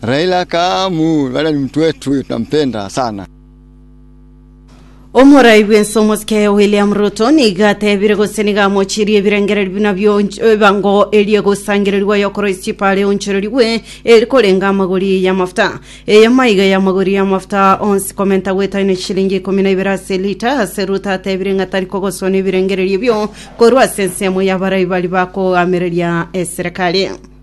Raila akamoiraneria, Nimtwetwe, twampenda sana. Omorai bw'ense omosike William Ruto nigo atebire gose nigo amochirie ebirengererio buna bionch- ebango erie gosangererigwa y'okorwa echipa are onchorerigwe eri korenga amagori y'amafuta. Eye maiga y'amagori y'amafuta onsi komenta gwetaine chilingi ikomi na ibere ase elita ase Ruto atebire ng'a tari kogoswa nebirengererio ebio korwa ase ensemo y'abarai bari bakogamereria eserekari.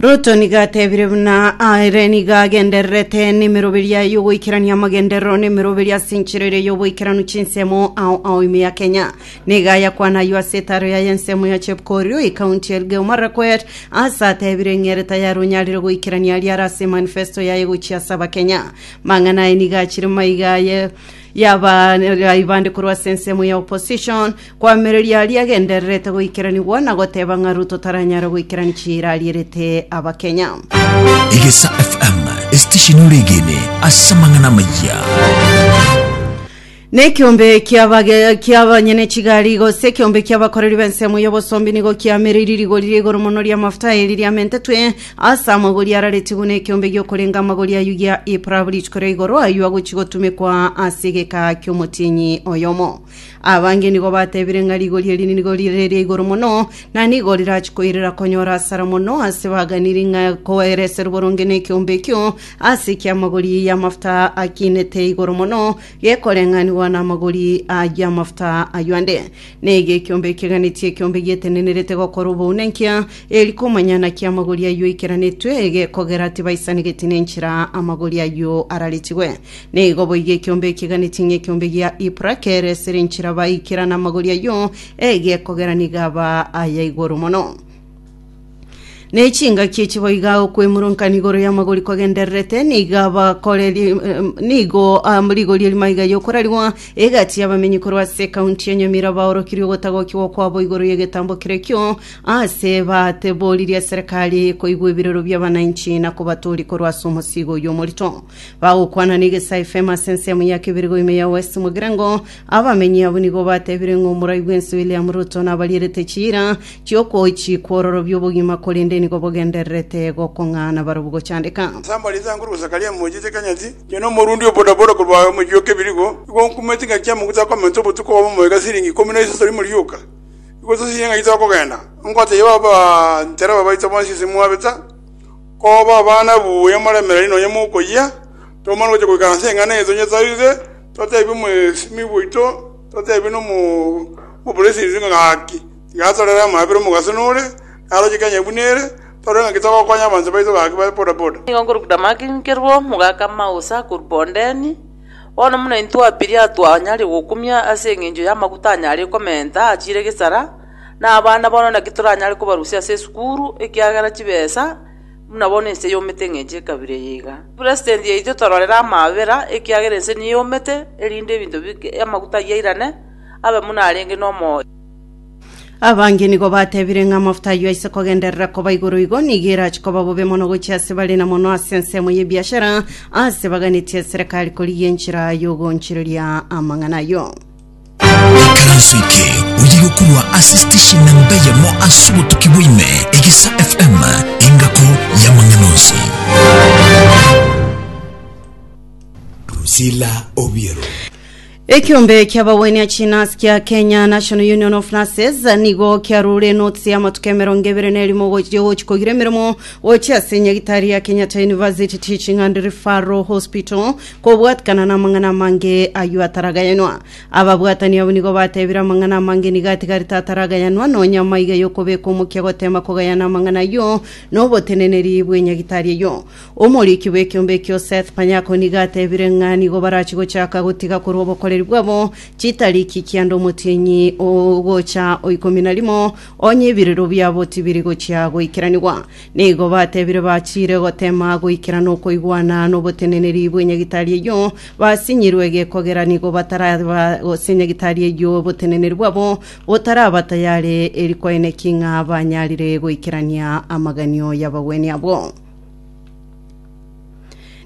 Ruto nigo atebire buna aere nigo agendererete n'emeroberia y'ogoikerania amagenderero n'emeroberia ase enchera eria y'oboikeranu chinsemo ao ao ime ya Kenya. Nigo ayakwana ayio ase etaro yaye ensemo ya Chepkorio ekaunti ya Elgeyo Marakwet ase atebire eng'erete yare onyarire goikerania aria are ase manifesto yaye gochia ase abakenya. Mang'ana aye nigo achire maiga aye yaba yaibande korwa ase ensemo ya opposition Koamereria aria agendererete goikeranigwa na goteba ng'a Ruto taranyare goikerania chiira arierete Abakenya. Egesa FM, esitesheni oregene ase amang'ana amayia. Nekiombe ki'abage ki'abanyene chigari gose ekiombe ki'abakoreri b'ensemo y'obosombi nigo kiamereirie rigori ria igoro mono ri'amafuta eri riamentetwe ase amagori araretie buna ekiombe gi'okorenga amagori ayio gia ipurabu rituko ria igoro ayio agochi gotumekwa ase egeka ki'omotienyi oyomo Abange nigo batebire ng'a rigori eri nigo rire eria igoro mono, na nigo rirachi koirera konyora asara mono ase baganiri ng'a koereserwe boronge nekeombe ekio ase ekiamagori y'amafuta akinete igoro mono, gekoreng'anigwa namagori ayio amafuta ayio ande. Na ege ekiombe ekeganetie ekiombe gietenenerete gokora oboune nkia, eri komanyana kiamagori ayio aikeranetwe, gekogera tibaisanegeti nenchera amagori ayio araritigwe. Nigo boigo ekiombe ekeganeti ng'ekiombe gia Yipra keresire enchera baikera namagori ayio, egekogera nigo aba aya igoro mono. Ne chingaki echi boiga okwemurunka igoro y'amagori kwagendererete, nigo abakore ri- em, nigo am, rigori erimaiga y'okorarigwa egati y'abamenyi korwa ase ekaunti ya Nyamira baorokirie ogotagokigwa kwabo igoro y'egetambo kere ekio, aase bateboririe eserekari koigwa ebirero bi'abananchi na kobatooria korwa ase omosiigo oyio omorito. Bagokwana negesaai fame ase ensemo ya keberego ime ya West Mugirango. Abamenyi abwo nigo batebire ng'a omorai bw'ense William Ruto nabarierete chiira chi'okochikwa ororobia obogima korende nigo bogendererete gokong'aana barobwo gochandeka. Ase amari ase Ankuru Zakaria Emoji Chekanyati, inche na omorundi o bodaboda korwa omochie o Kebirigo, nigo nkumeti ngaki amaguta akomenta obotuko obo moika siringi ikomi na isato rimo rioka. Nigo tosiririe ngaki tokogenda. Ongotebiwa abantereba baito bonsi ase mwabeta. Koba abana buya moremereri nonya mokoyia, tomana gocha goika ase eng'ana eria tonyesarise, totebi omosemi bwaito, totebi nomo omopresident ng'a gaki, tiga atorere amaabera buna omogaso nore, naroche Kenya buna ere, torore ng'a ki togokonya abanto baito gaki ba boda boda. Nigo nkorokwa Damaki nkerwo omogaka amausa akorwa bondemi, bono buna intwe babere atwanyare gokumia ase engencho y'amaguta anyare komenta achiire gesara, Na abana bono naki toranyare kobarusia ase esukuru ekiagera chibesa buna bono ense yomete ng'encho ekabira eye iga. President yaito tororere amabera ekiagera ense niyo yomete erinde ebinto amaguta ayio airane abe buna arenge nomoyo. Abange nigo batebire ng'a amafuta ayio aise kogenderera koba igoro igo nigo erache koba bobe mono gochia ase bare na mono ase ensemo y'ebiashara ase baganetie eserekari korigia enchera y'ogoonchereria amang'ana ayio. Ekaranso eke oye yokorwa ase station namba eyemo ase obotuki bwa ime, Egesa FM, engako y'amang'ana onsi. Drusilla Obiero. Ekiombe kia ababweni a Chinas kia Kenya National Union of Nurses nigo kiarure notisi ya amatuko emerongo ebere na erimo gochia gochi kogira emeremo gochia ase enyagitari ya Kenyatta University Teaching and Referral Hospital Kobwatikana namang'ana amange ayio ataragayanwa. Ababwatani abwo nigo batebire amang'ana amange nigo atigarete ataragayanwa, nonya amaiga y'okobeka omokia goteema kogayana amang'ana ayio noboteneneri bw'enyagitari eyio. Omoriki bw'ekiombe ekio Seth Panyako nigo atebire ng'a nigo barachie gochaka gotiga korwa obokoreri bwabo chitariki kianda omotienyi ogocha oikomi na rimo, onye ebirero biabo tibiri gochia goikeranigwa. Nigo batebire bachiire gotema goikera nokoigwana noboteneneri bw'enyagitari eyio, basinyirwe gekogera nigo bataraba gose enyagitari eyio oboteneneri bwabo botaraba tayare eri koeneki ng'a banyarire goikerania amaganio y'abagwenia abo.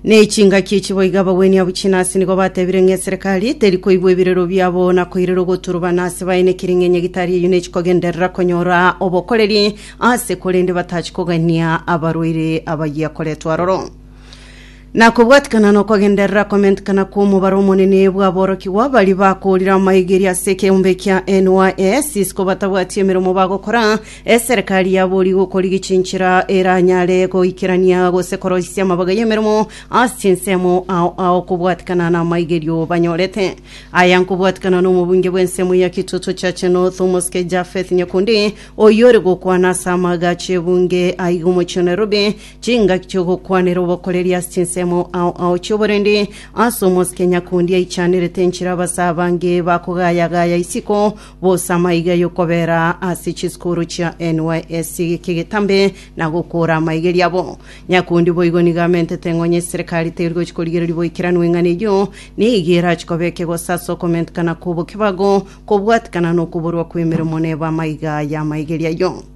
Ne chingaki echi boigo ababweni abwo chinasi nigo batebire ng'a eserekari teri koigwa ebirero biabo na koirera ogoturubana ase baene kiring'enye gitari eyio nechi kogenderera konyora obokoreri ase korende batachi kogania abarwaire abayia koretwa aroro. Na kobwatikana na okogenderera komentekana kw'omobaro omonene bw'aborokigwa baria bakoorire amaegeri ase ekeombe kia NYS isiko batabwati emeremo bagokora, Eserekari ya boorigo kori gichinchera eranyare goikerania gose koroisia amabaga y'emeremo ase chinsemo ao ao kobwatikana n'amaigerio banyorete. Aya nkobwatikana n'omobunge bw'ensemo ya Kitutu Chache North omosike Japheth Nyakundi oyore gokwana ase amaagacho ebunge aiga omochie o Nairobi chingaki chi'ogokwanera obokoreri ase chinsemo ao ao chi'oborendi ase omosike Nyakundi aichanerete enchera abasee abange bakogayagaya isiko Bosama iga y'okobera ase chisukuru chia NYSC kigetambe na gokora amaigeri abo. Nyakundi boigo nigo amentete ng'o onye serikali teri gochi korigereria boikeranu eng'ana eyio nigo erachi koba ekegoso ase okomentekana kw'obokebago kobwatekana nokoborwa kw'emeremo neba amaiga y'amaigeri ayio.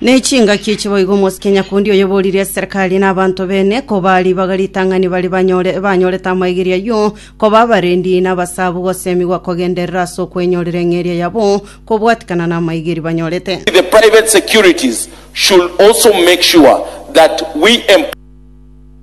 Ne chingaki echi boigo omosike nyakundi oyobooririe eserekari na abanto bene koba ribaga ritang'ani bare banyore banyorete amaigerio ayio koba abarendi na abasabu gosemigwa kogenderera ase okwenyorera eng'eria yabo kobwatikana n'amaigeri banyorete. The private securities should also make sure that we